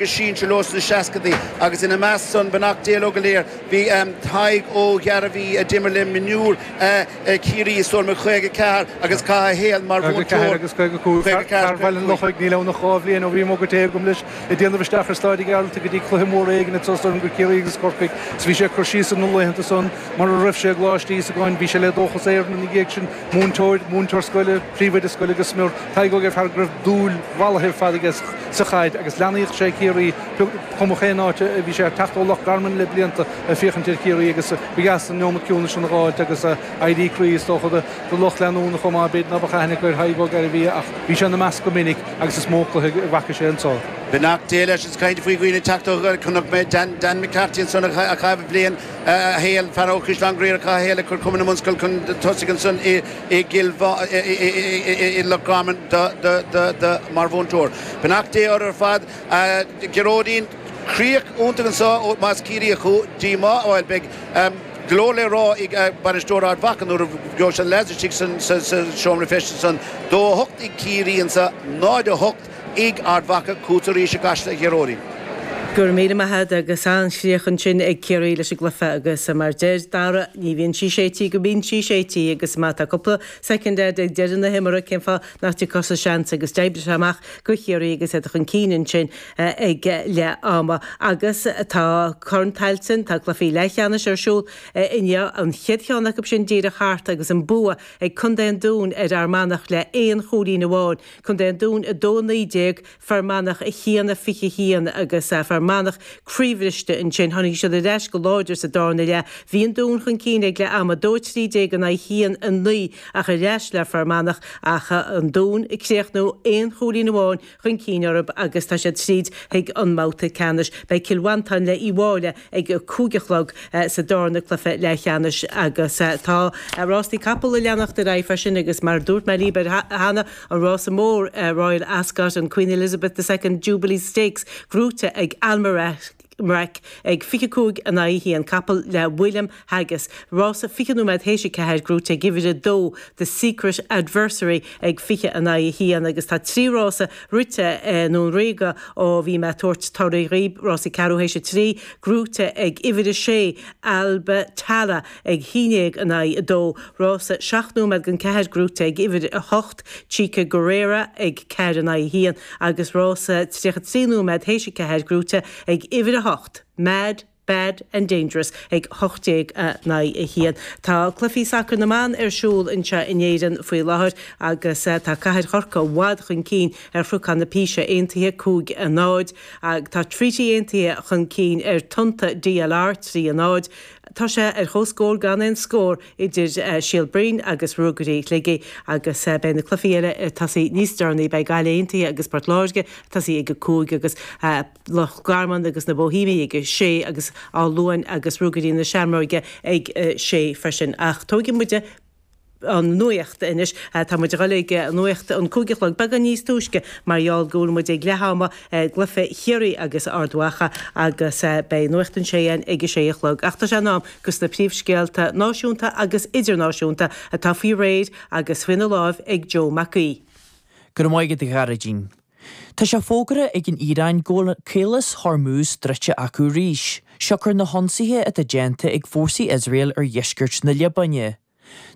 go sinsir leo sna seascaidí agus ina measc san beannacht Dé leo go léir. Bhí Tadhg Ó Gairbhí a d'imir le mionúir Chiarraí is dóigh liom 54 agus chaith a shaol mar mhúinteoir. 54 agus 55, 54 agus 55. Fear Bhaile an Lochaigh, níl ann ach dhá bhliain ó bhí muga tae agam leis ag déanamh isteach ar Stáid an Ghearaltaigh go dtí cluiche mór éigin is dóigh liom go Ciarraí agus Corcaigh agus bhí sé ag cur síos ar na laethanta san mar a raibh sé i gColáiste Íosagáin bhí sé le Dóchas Éireann ina dhiaidh sin, múinteoir, múinteoir scoile. Príomhoide scoile go smior, Tadhg Ó Gairbhí, go raibh dúil mhallaithe ar fad aige sa chaid agus leanaíodh sé Ciarraí cuma cén áit a bhí sé ag teacht ó Loch Garman le blianta ag féachaint ar Chiarraí agus ba dheas an neomat ciúnais a fháilt agus a éirí croí is dócha do lucht leanúna chomh maith b'fhéidir ná beadh aithne acu ar Thadhg Ó Gairbhí ach bhí sé ina measc go minic agus is mó cluiche a bhfaca sé anseo. Beannacht Dé leis an chaint faoi dhaoine ag teacht ó Chnoc Méabh, Dan Dan McCarthy ansan a chaith bliain a shaoil, fear ó Chaisleán Ghriaire a chaith a shaol ag cur cumann na mbunscol chun tosaigh ansan i i gCill i Loch Garman mar mhúinteoir. Beannacht Dé orthu ar fad. Gearóidín, críoch iontach anseo más Ciarraíoch thú, díomá, bhuel, beidh go leor le rá ag bainisteoir Ard Mhacha nuair a gheobhaidh sé na leaids istigh sa seomra feistis ansan. 2 8 ag Ciarraí anseo, 0 8. Ag Ard Mhacha, chugatsa arís i gCasla, a Ghearóidín. Go raibh míle maith a'd agus an-chríoch ansin ag Ciarraí leis an gcluiche agus mar deir Dara, ní bhíonn sí séidte go mbíonn sí séidte agus má tá cúpla soicind a'd ag deireadh na himeartha cén fáth nach dtógfadh tusa seans agus d'oibrigh sé amach do Chiarraí agus iad chun cinn ansin ag leath ama agus tá Corn Tailteann, tá cluichí leathcheannais ar siúl inniu, an chéad cheann acu sin díreach thart agus an bua ag Contae an Dúin ar Fhear Manach le aon chúilín amháin. Contae an Dúin 2 19, Fear Manach 1 21 agus Fear Manach croíbhriste ansin. Tháinig siad ar ais go láidir sa darna leath. Bhí an Dún chun cinn ag leath ama, 2 13 in aghaidh 1 9, ach ar ais le Fear Manach ach an Dún ag críochnú aon chúilín amháin chun cinn orthu agus tá siad tríd chuig an mbabhta ceannais. Beidh Cill Mhantáin le Uíbh Fhailí ag a cúig a chlog sa darna cluiche leathcheannais, agus tá rásaí capall ag leanacht ar aghaidh freisin agus, mar a dúirt mé libh cheana, an rása mór Royal Ascot an Queen Elizabeth the Second Jubilee Stakes gnóite ag Almeraq ag fiche cúig in aghaidh a haon, capall le William. Haggas. Rása 20 nóiméad théis a ceathair, gnóite ag uimhir a dó, The Secret Adversary ag 20 in aghaidh a haon agus tá trí rása rite i nDún Ríoga ó bhí mé ag tabhairt torthaí dhaoib, Rása ceathrú théis a trí, gnóite ag uimhir a sé, Alba Tara ag a haon déag in aghaidh a dó, Rása seacht nóiméad don ceathair, gnóite ag uimhir a hocht, Chica Guerrera ag ceathair in aghaidh a haon agus rása tríocha trí nóiméad théis a ceathair, gnóite ag uimhir a hocht, Mad. Bad and Dangerous ag 18:01. Tá cluichí sacair na mban ar siúl anseo in Éirinn faoi láthair agus tá Cathair Chorcaí i bhfad chun cinn ar Chnocán na Píse Aontaithe 'cúig a náid' agus tá Treaty Aontaithe chun cinn ar Tonnta DLR 'trí a náid'. Tá sé ar chomhscór gan aon scór idir Síol Broin agus Ruagairí Shligigh agus beidh na cluichí eile ag tosaí níos deireanaí. Beidh Gaillimh Aontaithe agus Port Láirge ag tosaí ag a cúig agus. Loch Garman agus na Bóithéimigh ag a sé agus Áth Luain agus Ruagairí na Seamróige ag a sé freisin. Ach tógfaidh muide an nuacht anois. Tá muid a dhul ag nuacht an cúig a chlog beagán níos túisce mar gheall go bhfuil muid ag leath ama i gcluiche Chiarraí agus Ard Mhacha agus beidh nuacht an sé ann ag a sé a chlog. Ach tá sé in am dos na príomhscéalta náisiúnta agus idirnáisiúnta atá faoi réir agus faoina láimh ag Joe Mac Aoidh. Go raibh maith agat a Ghearóidín. Tá sé fógartha ag an Iaráin go bhfuil Caolas Hormuz druidte acu arís, siocair na hionsaithe atá déanta ag fórsaí Iosrael ar dheisceart na Liobáine.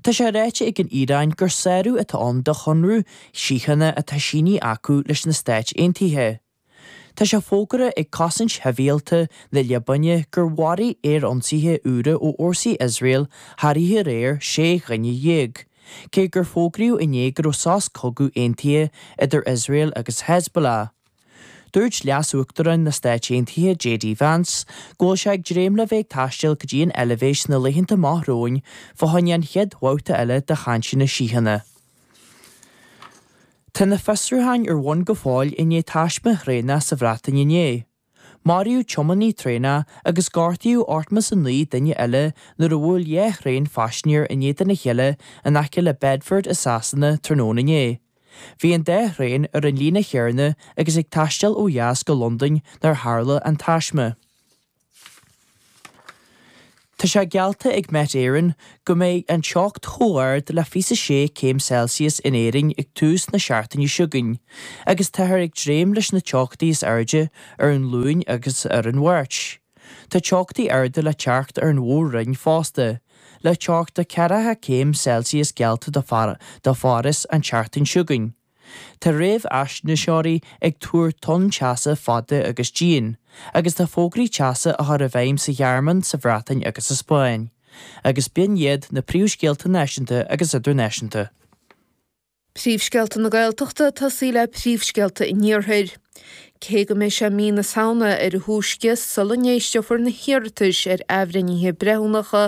Tá sé ráite ag an Iaráin gur sárú atá ann ar chonradh síochána atá sínithe acu leis na Stáit Aontaithe. Tá sé fógartha ag Cosaint Shibhialta na Liobáine gur mharaigh aerionsaithe úra ó fhórsaí Iosrael thar oíche aréir sé dhuine déag. Cé gur fógraíodh inné go raibh sos cogaidh aontaithe idir Iosrael agus Hezbollah, dúirt Leas-Uachtarán na Stát Aontaithe JD Vance go bhfuil sé ag dréim le bheith ag taisteal go dtí an Eilbhéis sna laethanta amach romhainn fá choinne an chéad bhabhta eile de chainteanna síochána. Tá na fiosrúcháin ar bhun go fóill i ndiaidh taisme traenach sa Bhreatain inné. Maraíodh tiománaí traenach agus gortaíodh ochtó is a naoi nduine eile nuair a bhuail dhá thraein phaisinéir in éadan a chéile in aice le Bedford i Sasana tráthnóna inné. Bhí an dá thraein ar an líne chéanna agus ag taisteal ó dheas go Londain nuair a tharla an taisme. Tá sé geallta ag Met Éireann go mbeidh an teocht chomh ard le 26 céim Celsius in Éirinn ag tús na seachtaine seo chugainn agus táthar ag dréim leis na teochtaí is airde ar an Luan agus ar an Mháirt. Tá teochtaí arda le teacht ar an Mhór-Roinn fosta, le teocht de 40 céim Celsius geallta do Pháras an tseachtain seo chugainn. Tá réamhaisnéiseoirí ag tuar tonn teasa fada agus dian, agus tá fógraí teasa á gcur i bhfeidhm sa Ghearmáin, sa Bhreatain agus sa Spáinn, agus b'in iad na príomhscéalta náisiúnta agus idirnáisiúnta. Príomhscéalta na Gaeltachta ag tosaí le príomhscéalta an Iarthair. Cé go mbeidh sé mí na Samhna ar a thúisce sula n-éisteofar na hiarratais ar athbhreithnithe breithiúnacha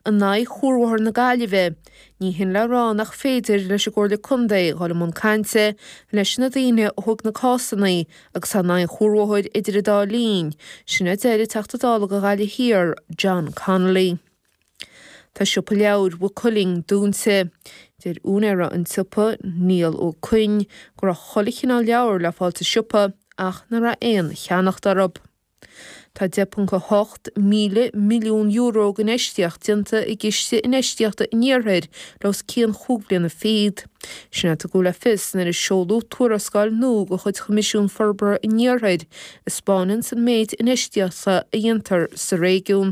in aghaidh chuarbhóthar na Gaillimhe, Ní hin le rá nach féidir leis an gComhairle Contae dhul i mbun cainte leis na daoine a thóg na cásanna agus tá in aghaidh an chuarbhóthair idir an dá linn, sin a deir an Teachta Dála do Ghaillimh Thiar, John Connolly. Tá siopa leabhair Mhaigh Cuilinn dúnta. Deir úinéir an tsiopa, Niall Ó Coinn, go raibh chuile chineál leabhair le fáil sa siopa ach nach raibh aon cheannacht orthu. Tá €10.8 míle milliún euro d'infheistíocht déanta i gCiste Infheistíochta an Iarthair le os cionn chúig bliana fichead. Sin é a tugadh le fios nuair a seoladh tuarascáil nua de chuid Choimisiún Forbartha an Iarthair a 'spáineanns an méid infheistíochta a dhéantar sa réigiún.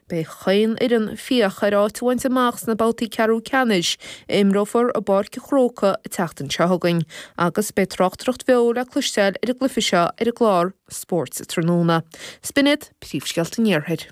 Beidh chaon fhoireann ag féachaint le áit a bhaint amach sna babhtaí ceathrú ceannais a imreofar i bPáirc an Chrócaigh an tseachtain seo chugainn agus beidh tráchtaireacht bheo le cloisteáil ar an gcluiche seo ar an gclár Spórt an Tráthnóna. Sin iad Príomhscéalta an Iarthair.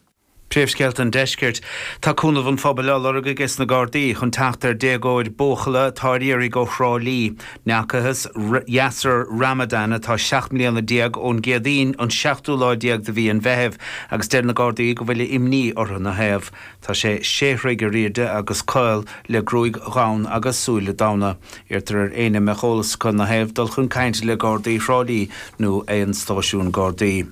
Príomhscéalta an Deiscirt. Tá cúnamh an phobail á lorg ages na Gardaí chun teacht ar dhéagóir buachalla atá ar iarraidh ó Thrá Lí. Ní fhacthas Yasir Ramadan, atá seacht mbliana déag ón gCéadaoin, an seachtú lá déag de mhí an Mheithimh, agus deir na Gardaí go bhfuil imní orthu ina thaobh. Tá sé sé throigh ar airde agus caol, le gruaig dhubh agus súile donn. Iarrtar ar éinne a mbeadh eolas acu ina thaobh dul chun cainte le Gardaí Thrá Lí nó aon stáisiún Gardaí.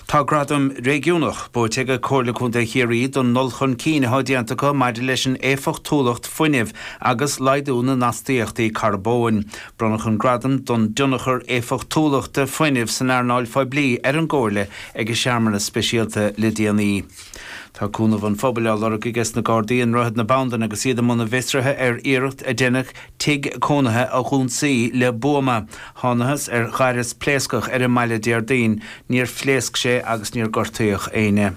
Tá gradam réigiúnach buaite ag Comhairle Contae Chiarraí don ndul chun cinn atá déanta acu maidir leis an éifeachtúlacht fuinnimh agus laghdú na n-astaíochtaí carbóin. Bronnadh an gradam don dtionchar éifeachtúlachta fuinnimh san earnáil phoiblí ar an gComhairle ag searmanas speisialta le déanaí. Tá cúnamh an phobail á lorg ages na Gardaí i nDroichead na Bandan agus iad i mbun a bhfiosraithe ar iarracht a deineadh Tigh cónaithe a dh'ionsaí le buama. Thánathas ar ghaireas pléascach ar an mbaile Déardaoin. Níor phléasc sé agus níor gortaíodh éinne.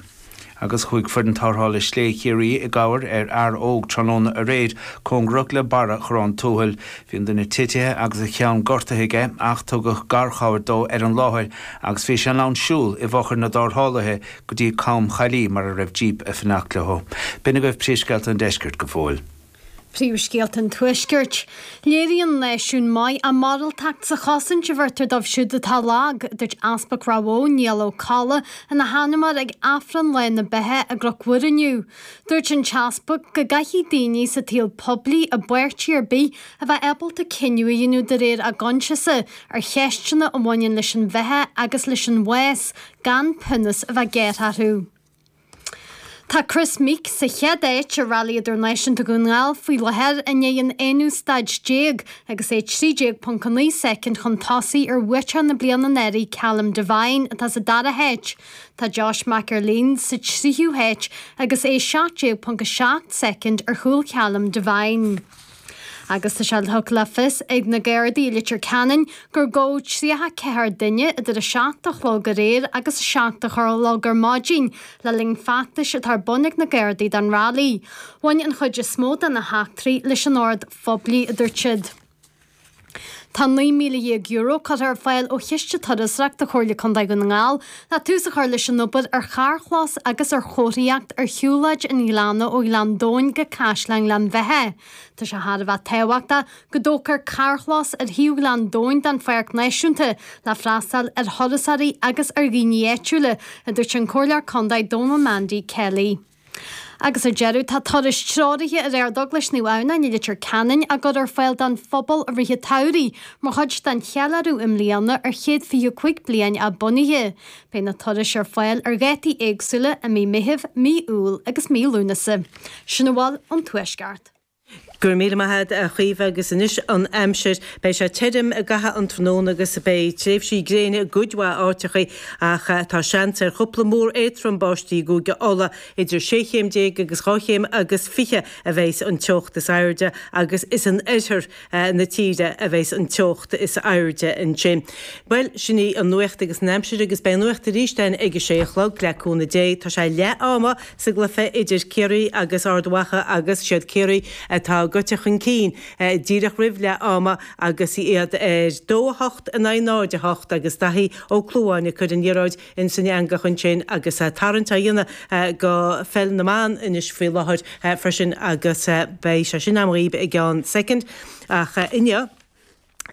Agus chuaigh foireann tárthála sléibhe Chiarraí i gcabhair ar fhear óg tráthnóna aréir cóngarach do bharra Chorrán Tuathail. Bhí an duine titithe agus a cheann gortaithe aige ach tugadh garchabhair dó ar an láthair agus bhí sé in ann siúl i bhfochair na dtárthálaithe go dtí Com Chaillí mar a raibh jíp ag fanacht leo. B'in agaibh príomhscéalta an deiscirt go fóill. Príomhscéalta an Tuaiscirt. Léiríonn an náisiún maith a mhoráltacht sa chosaint a bheirtear dóibh siúd atá lag, a dúirt Easpag Ráth Bhoth, Niall Ó Cadhla, ina sheanmóir ag Aifreann Lá na Beatha i gCnoc Mhuire inniu. Dúirt an tEaspag go gcaithfidh daoine sa tsaol poiblí i bpáirtí ar bith a bheith ábalta cinneadh a dhéanamh de réir a gcoinsiasa ar cheisteanna a bhaineann leis an bheatha agus leis an bhás, gan pionós a bheith gearrtha orthu. Tá Kris Meeke sa chéad áit i Railí Idirnáisiúnta Dhún na nGall faoi láthair i ndiaidh an aonú staid déag agus é 13.9 soicind chun tosaigh ar bhuaiteoir na bliana anuraidh Callum Devine atá sa dara háit. Tá Josh McErlean sa tríú háit agus é 17.7 soicind ar chúl Callum Devine. Agus tá sé tugtha le fios ag na Gardaí i Leitir Ceanainn gur gabhadh 34 duine idir 7 a chlog aréir agus 7 a chlog ar maidin le linn feachtais atá ar bun ag na Gardaí don railí. Bhain an chuid is mó de na heachtraí leis an ord phoiblí, a dúirt siad. Tá €19,000 curtha ar fáil ó chiste turasóireachta do Chomhairle Contae Dhún na nGall le tús a chur leis an obair ar charrchlós agus ar chomharthaíocht ar shiúlóid an ghleanna ó Ghleann Domhain go Caisleán Ghleann Bheithe. Tá sé thar a bheith tábhachtach go dtógfar carrchlós ar shuíomh Ghleann Domhain don Pháirc Náisiúnta le freastal ar thurasóirí agus ar dhaoine áitiúla, a dúirt an Comhairleoir Contae Dónal Mandy Kelly. Agus ar deireadh, tá turais treoraithe ar Ardeaglais Naomh Adhamhnáin i Leitir Ceanainn á gcur ar fáil don phobal i rith an tsamhraidh mar chuid den cheiliúradh i mbliana ar chéad 25 bliain a bunaithe. Beidh na turais ar fáil ar dhátaí éagsúla i mí Meithimh, mí Iúil agus mí Lúnasa. Sin a bhfuil ón Tuaisceart. Go raibh míle maith agat, a Chaoimhe, agus anois an aimsir. Beidh sé tirim i gcaitheamh an tráthnóna agus beidh tréimhsí gréine i gcuid mhaith áiteachaí ach tá seans ar chúpla múr éadtrom báistí i gCúige Uladh. Idir sé chéim déag agus dhá chéim agus fiche a bheas an teocht is airde agus is in oirthear. na tíre a bheas an teocht is airde ansin. Bhuel, sin í an nuacht agus an aimsir agus beidh an nuacht arís againn ag a sé a chlog, le cúnamh Dé. Tá sé leath ama sa gcluiche idir Ciarraí agus Ard Mhacha agus siad Ciarraí atá gaibhte chun cinn díreach roimh leath ama agus iad ar dó a hocht in aghaidh náid a hocht agus Daithí Ó Clúmháin ag cur an liathróid insan eangach ansin agus tarraingt á dhéanamh go Peil na mBan anois faoi láthair freisin agus beidh sé sin amhlaidh i gceann soicind. Ach inniu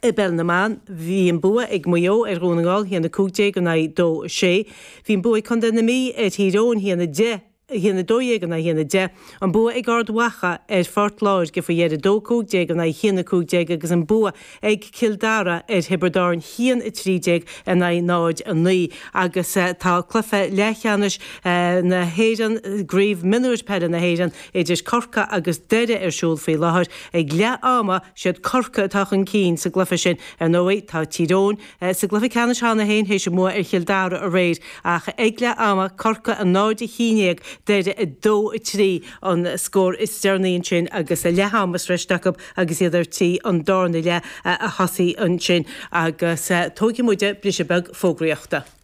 i bPeil na mBan, bhí an bua ag Maigh Eo ar Dhún na nGall, 1 15 in aghaidh 2 6. Bhí an bua ag contae na Mí ar Thír Eoghain, 1 10. 1-12 in aghaidh 1-10, an bua ag Ard Mhacha ar Phort Láirge faoi dheireadh, 2, 15 in aghaidh 1, 15, agus an bua ag Cill Dara ar Thiobraid Árann 1-13 in aghaidh 0, 9, agus tá cluiche leathcheannais na hÉireann i gCraobh Mionúir Peile na hÉireann idir Corcaigh agus Doire ar siúl faoi láthair. Ag leath ama, siad Corcaigh atá chun cinn sa gcluiche sin. Ar ndóigh, tá Tír Eoghain. sa gcluiche ceannais cheana féin théis a mbua ar Chill Dara aréir ach ag leath ama, Corcaigh 0 1 dhéag Doire 2 3 an scór is deireanaí ansin agus a leath ama sroichte acu agus iad ar tí an darna leath a thosaí ansin agus tógfaidh muid briseadh beag fógraíochta.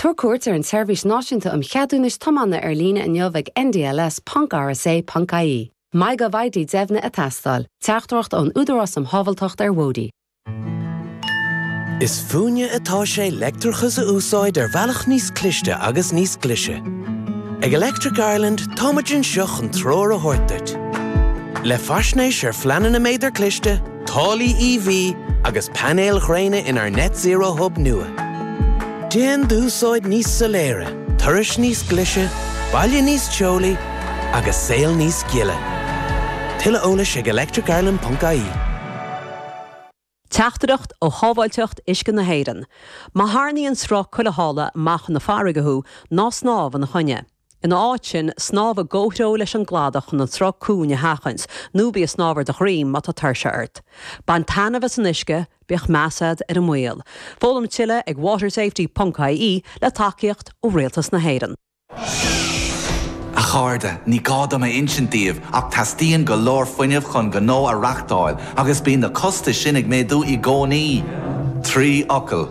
Tabhair cuairt ar an tSeirbhís Náisiúnta um Cheadúnais Tiomána ar líne inniu ag ndls.rsa.ie. MyGovID deimhnithe ag teastáil. Teachtaireacht ón Údarás um Shábháilteacht ar Bhóithre. Is fúinne atá sé leictreachas a úsáid ar bhealach níos cliste agus níos glise. Ag Electric Ireland, táimid anseo chun treoir a thabhairt duit. Le faisnéis ar phleananna méadar cliste, Táillí EV agus painéil ghréine inár Net Zero Hub nua. Déan d'úsáid níos soiléire, turas níos glise, baile níos teolaí agus saol níos gile. Tuilleadh eolais ag electricireland.ie. Teachtaireacht ó Shábháilteacht Uisce na hÉireann, Má tharraingíonn sruth cuilitheála amach chun na farraige thú, ná snámh ina choinne. Ina áit sin, snámh i gcomhthreo leis an gcladach chun an sruth cúng a sheachaint, nó bí ag snámh ar do dhroim má tá tuirse ort. Bain taitneamh as an uisce, bíodh meas agat ar an mbaol. Foghlaim tuilleadh ag watersafety ponc ie, le tacaíocht ó Rialtas na hÉireann. A chairde, ní gá dom a insint daoibh ach teastaíonn go leor fuinnimh chun gnó a reachtáil agus bíonn na costais sin ag méadú i gcónaí. Trí fhocal.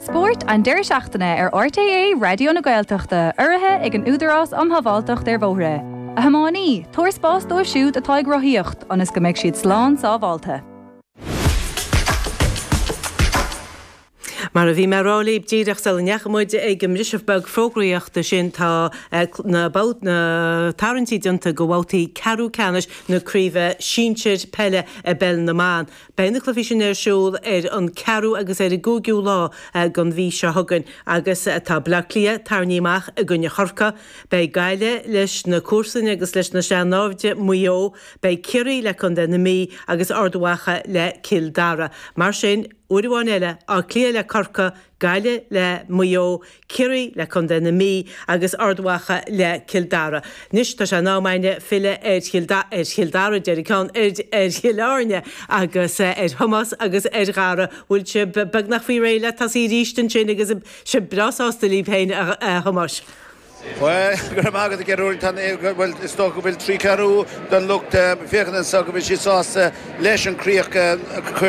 Spórt an deireadh seachtaine ar RTÉ Raidió na Gaeltachta, urraithe ag an Údarás Um Shábháilteacht ar Bhóithre. A thiománaí, tabhair spás dóibh siúd atá ag rothaíocht ionas go mbeidh siad slán sábháilte. Mar a bhí mé a rá libh díreach sula ndeachaigh muid ag an mbriseadh beag fógraíochta sin, tá na tarraingtí déanta do bhabhtaí ceathrú ceannais na craoibhe sinsir peile i bpeil na mban. Beidh na cluichí sin ar siúl ar an 4ú agus ar an 5ú lá den mhí seo chugainn agus tá Baile Átha Cliath tarraingthe amach i gcoinne Chorcaí, beidh Gaillimh leis na comharsana agus leis na sean-naimhde, Maigh Eo, beidh Ciarraí le contae na Mí agus Ard Mhacha le Cill Dara. Mar sin, uair amháin eile, Áth Cliath le Corcaigh, Gaillimh le Maigh Eo, Ciarraí le contae na Mí agus Ard Mhacha le Cill Dara. Anois tá sé in am againne filleadh ar Chill Dara, déarfaidh mé ceart ar Chill Airne agus ar Thomás agus ar Dhara. Bhfuil sibh beagnach faoi réir le tosaí arís ansin agus sibh breá sásta libh féin, a Thomáis? Bhuel, go raibh maith agat, a Ghearóid. Tá an, bhuel, is dócha go bhfuil trí ceathrú den lucht féachana anseo, go bhfuil siad sásta leis an chríoch a chuir.